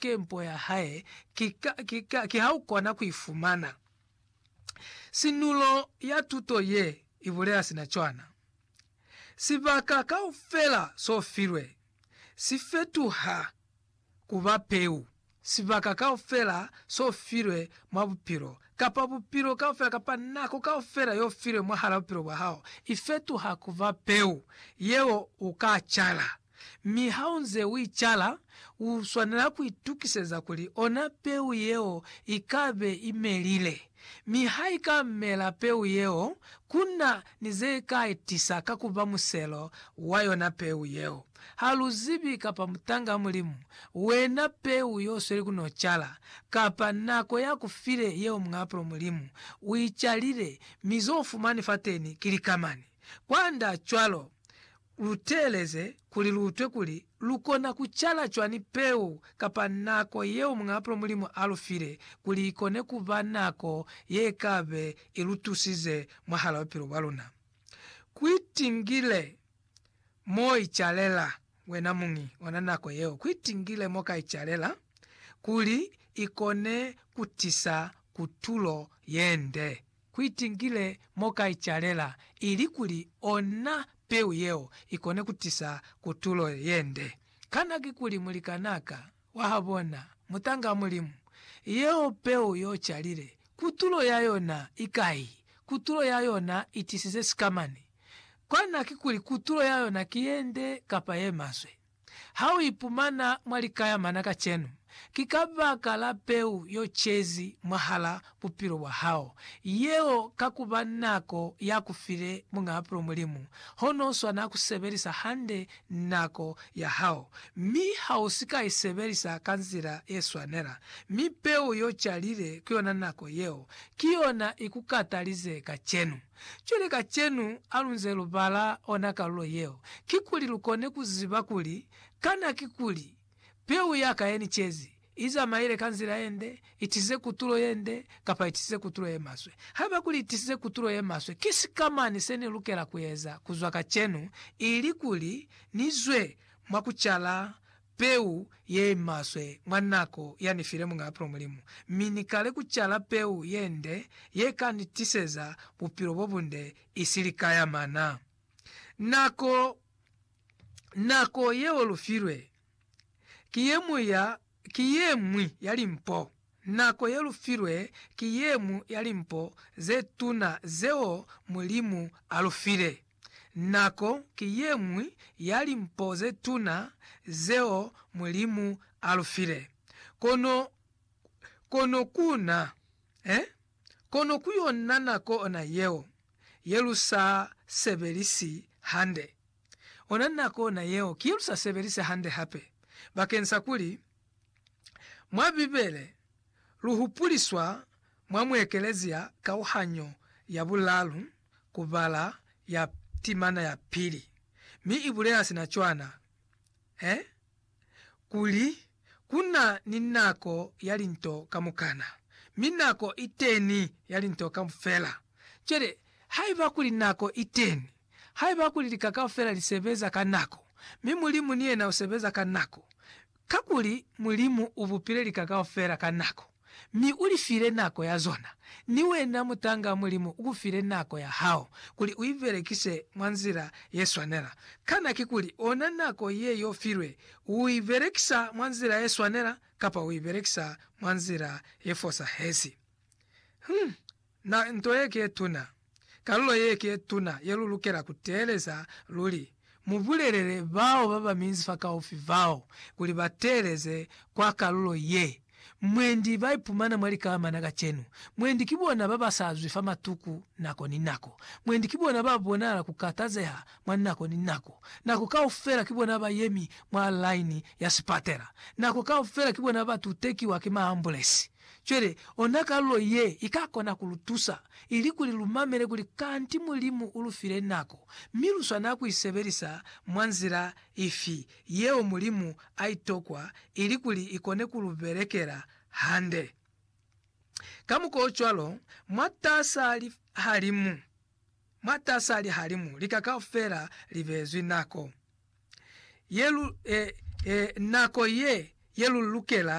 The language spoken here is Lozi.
Ke mpo ya hae, ki, ka, ki, ka, ki ha u kona ku i fumana. Sinulo ya tuto ye i bulela sina cwana. Sibaka kaufela so filwe, si fetuha ku ba Peu, sibaka kaufela so filwe mwa Bupilo, kapa Bupilo kaufela, kapa nako kaufela yo filwe mwahala bupilo bwa hao, i fetuha ku ba Peu yeo u ka cala. Mi ha u nze u i cala, u swanela ku itukiseza kuli ona peu yeo i ka be i melile. Mi ha i ka mela peu yeo, ku na ni ze ka i tisa ka ku ba muselo wa yona peu yeo. Ha lu zibi kapa mutang'a Mulimu, wena peu y'o sweli ku n'o cala, kapa nako y'a ku file yeo muapulo Mulimu u i calile, mi z'o fumani fateni ki likamani. Kwand'a cwalo, lu teeleze kuli lu utwe kuli lu kona ku cala cwani peu kapa nako yeo muñaapulo Mulimu a lu file kuli i kone ku ba nako ye ka be i lu tusize mwahal'a bupilo bwa luna. Ku itingile mo i calela wena muñi ona nako yeo, ku itingile mo ka i calela kuli i kone ku tisa kutulo ye nde. Kuitinkile mo ka icalela ilikuli ona peu yeo ikone kutisa kutulo yende. Kana kikuli mulikanaa ka wahabona, mutanga Mulimu? Yeo peu yocalile, kutulo yayona ikai? Kutulo yayona itisize sikamani. Kana kikuli kutulo yayona ki yende kapa yemaswe? Ha u ipumana mwa likayamana kacenu, ki kabaka la peu yo cezi mwahala bupilo bwa hao, yeo ka ku ba nako ya ku file Muñ'a Bupilo Mulimu, hono u swana ku sebelisa hande nako ya hao, mi ha u si ka i sebelisa ka nzila ye swanela, mi peu yo calile ku yona nako yeo, ki yona i ku katalize kacenu. Cwale kacenu alunze lubala ona kalulo yeo, kikuli lukone kuziba kuli, kana kikuli, Peu yaka yenicezi, izamaile ka nzila yende, itisize kutulo yende, kapa itisize kutulo yemaswe? Haiba kuli itisize kutulo yemaswe, ki sikamañi senilukela kueza kuzwa kacenu, ili kuli nizwe mwa kucala Peu yeimaswe mwa nako yani file Muñaa Pula Mulimu, mi Ni kale kucala peu yende yeka Ni tiseza bupilo bobunde, isi lika ya mana. Nako, nako yeo lufilwe, ki yemuñwi ya limpo. Nako ye lu filwe ki ye ñwi ya limpo ze tuna zeo Mulimu a lu file. Nako ki ye ñwi ya limpo ze tuna zeo Mulimu a lu file. Kono, kono ku na, eh? Kono ku yo na nako ona yeo, ye lu sa sebelisi hande. Ona nako ona yeo ki ye lu sa sebelisi hande hape, bakeng sa kuli, Mwa Bibele, lu hupuliswa mwa muekelezia kauhanyo ya bulalu ku bala ya timana ya pili, mi i bulela sina cwana, e, kuli, Ku na ni nako ya linto kamukana, mi nako iteni ya linto kaufela. Cwale, haiba kuli nako iteni, haiba kuli lika kaufela li sebeza ka nako, mi Mulimu ni yena u sebeza ka nako, Kakuli Mulimu u bupile lika kaufela ka nako, mi u li file nako ya zona. Ni wena mutanga, Mulimu u ku file nako ya hao kuli u i belekise mwa nzila ye swanela. Kana kikuli ona nako ye y'o filwe, u i belekisa mwa nzila ye swanela kapa u i belekisa mwa nzila ye fosahezi? Hum, Na nto ye ke tuna, kalulo ye ke tuna ye lu lukela ku teeleza luli. Mu bulelele bao ba ba minzi fakaufi bao kuli ba teeleze kwa kalulo ye. Mwendi ba ipumana mwa likamana kacenu. Mwendi ki bona ba ba sa zwi fa matuku nako ni nako. Mwendi ki bona ba bonala ku katazeha mwa nako ni nako. Nako kaufela ki bona ba yemi mwa laini ya sipatela. Nako kaufela ki bona ba tutekiwa ki maambulesi. Cwale, ona kalulo ye i ka kona ku lu tusa, ili kuli lu mamele kuli kanti Mulimu u lu file nako, mi lu swanela ku i sebelisa mwa nzila ifi yeo Mulimu a i tokwa ili kuli i kone ku lu belekela hande. Kamukwaocwalo, mwatas'a lihalimu, mwatas'a lihalimu lika kaufela li beezwi nako ye lu, e, e, nako ye, ye lu lukela